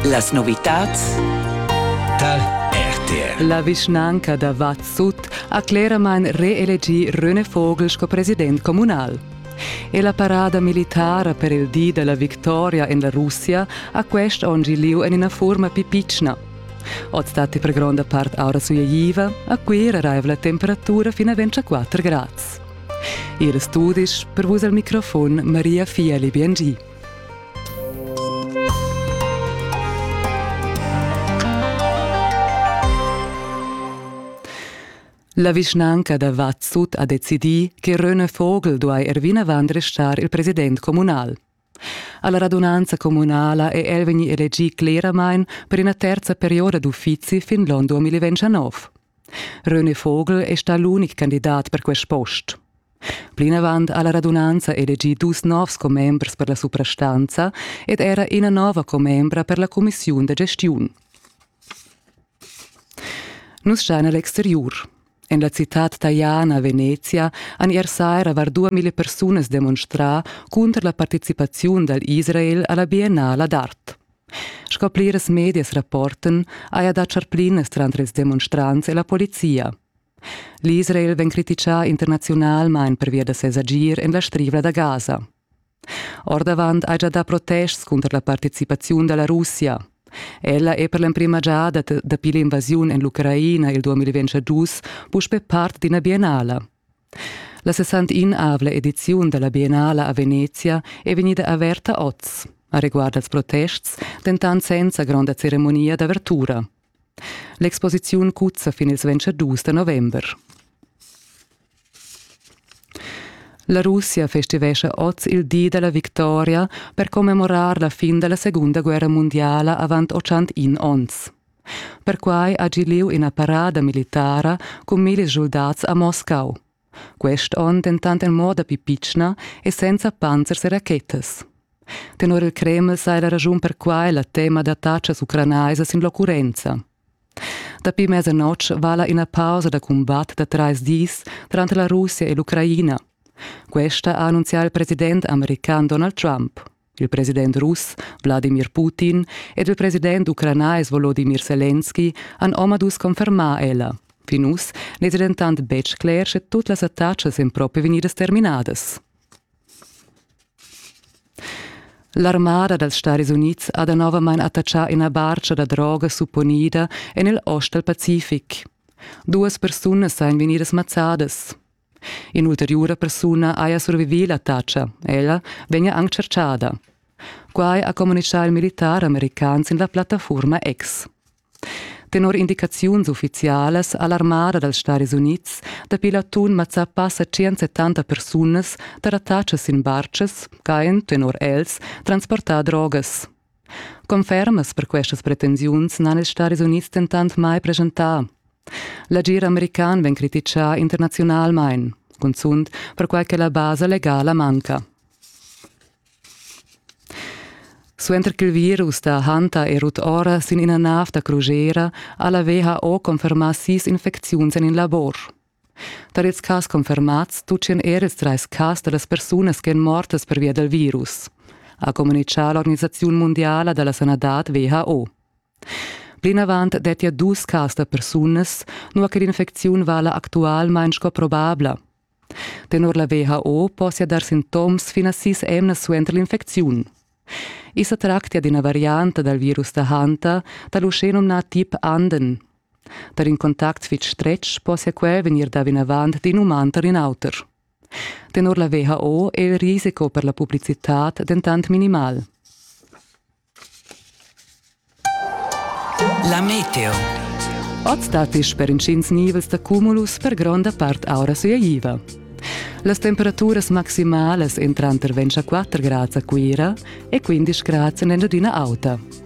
Las novitads Tal RTL. La vischnanca da Vad Sut ha cleramain reelegì Röne Vogel sco president communal. E la parada militara per il di della victoria en la Russia ha quest onn gi lieu en ina forma più pitschna. Oz datti per gronda part aura sugliaiva, a Cuira raiva la temperatura fino a 24 grads. Ils studis per vus al microfon Maria Fiali Biangi. La vischnanca da Vatsut ha decidì che Röne Vogel duai er vinavant restar il president communal. Alla radunanza communala è el vegni elegì cleramain per ina terza perioda d'uffizi fin l'onn 2019. Röne Vogel è stà l'unic candidat per quest post. Plinavant ha la radunanza elegì dus novs commembers per la suprastanza ed era ina nova commembra per la cumissiun da gestiun. Nus schain a l'exteriur. En la citad Tajana a Venezia han ier saira var 2000 persunas demonstrà cunter la participaziun dal Israel a la Biennala d'art. Sco pliras medias rapportan, haja dat charplinas tranter ils demonstrants e la polizia. L'Israel vegn criticà internaziunalmain pervia da ses agir en la Strivla da Gaza. Ordavant hai già dà protests cunter la participaziun da la Russia. Ella è per l'emprima giada dapi l'invasiun en l'Ucraina il 2022 puspè part d'ina biennala. La 61 ediziun della Biennala a Venezia è vegnida averta oz. A riguard als protests, dentant senza gronda ceremonia d'avertura. L'exposiziun cuzza fin ils 22 da november. La Russia festivescha oz il di della victoria per commemorar la fin della Segunda Guerra Mondiala avant 81 onns. Perquai ha gi lieu ina parada militara cun millis soldats a Moscau. Quest onn dentant en moda pli pitschna e senza panzers e rachetas. Tenor il Kreml sai la raschun per quai la tema da tatschas ucranaisas sin l'occurrenza. Dapi mesa notg vala ina pausa da cumbat da trais dis tranter la Russia e l'Ucraina. Questa ha annunzià il president american Donald Trump. il president russ Wladimir Putin ed il president ucranais Volodimir Selenski han omadus confermà ella. Fin uss n'è dentant betg cler sche tut las attacas èn propi vegnidas terminadas. L'armada dals Stadis Unids ha danovamain attaccà ina barca da droga supponida en il ost dal Pacific. Duas persunas èn vegnidas mazzadas. In'ulteriura persuna haja survivì l'attacca, ella vegnia anc tschertgada. Quai ha communitgà il militar american sin la plattafurma X. Tenor indicaziuns uffizialas ha l'armada dals Stadis Unids dapi l'atun mazzà passa 170 persunas da l'attacca sin bartgas ch'hajan tenor els transportà drogas. Confermas per questas pretensiuns n'han ils Stadis Unids dentant mai presentà. L'agir american vegn crititgà internaziunalmain, cunzunt perquai che la basa legala manca. Suenter ch'il virus da Hanta è rut ora sin ina nav da crugera ha la WHO confermà sis infecziuns en il labor. Tar ils cas confermads tutgan er ils trais cas da las persunas ch'èn mortas pervia dal virus, ha communitgà l'organisaziun mundiala da la sanadad WHO. Plinavant dettia dus cas da persunas, nua che l'infecziun vala actualmain sco probabla. Tenor la WHO possia dar sintoms fin a sis emnas suenter l'infecziun. I sa tractia d'ina varianta dal virus da Hanta da l'uschenumnà tip Anden, Per in contact fitg stretg possia quel vegnir dà vinavant d'in uman tar in auter. Tenor la WHO è il risiko per la publicitad dentant minimal. La meteo. Oz datti per intgins nivels da cumulus per gronda part aura suiaiva. Las temperaturas maximalas èn tranter 24 grads a Cuira e 15 grads en Engiadina Auta.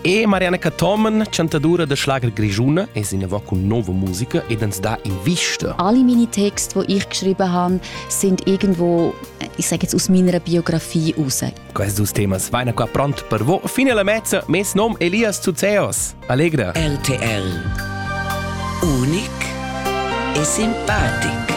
E Marianne Cathomen, chantadura da schlager grigiuna, es inavò cun nova musica ed ans dà invista. Alle meine Texte, die ich geschrieben habe, sind irgendwo, ich sage jetzt aus meiner Biografie raus. Questo dus temas vaina qua pronto per voi fino alla mezza. Mes nom Elias Tsuzeos. Allegra. RTL. Unic e simpatico.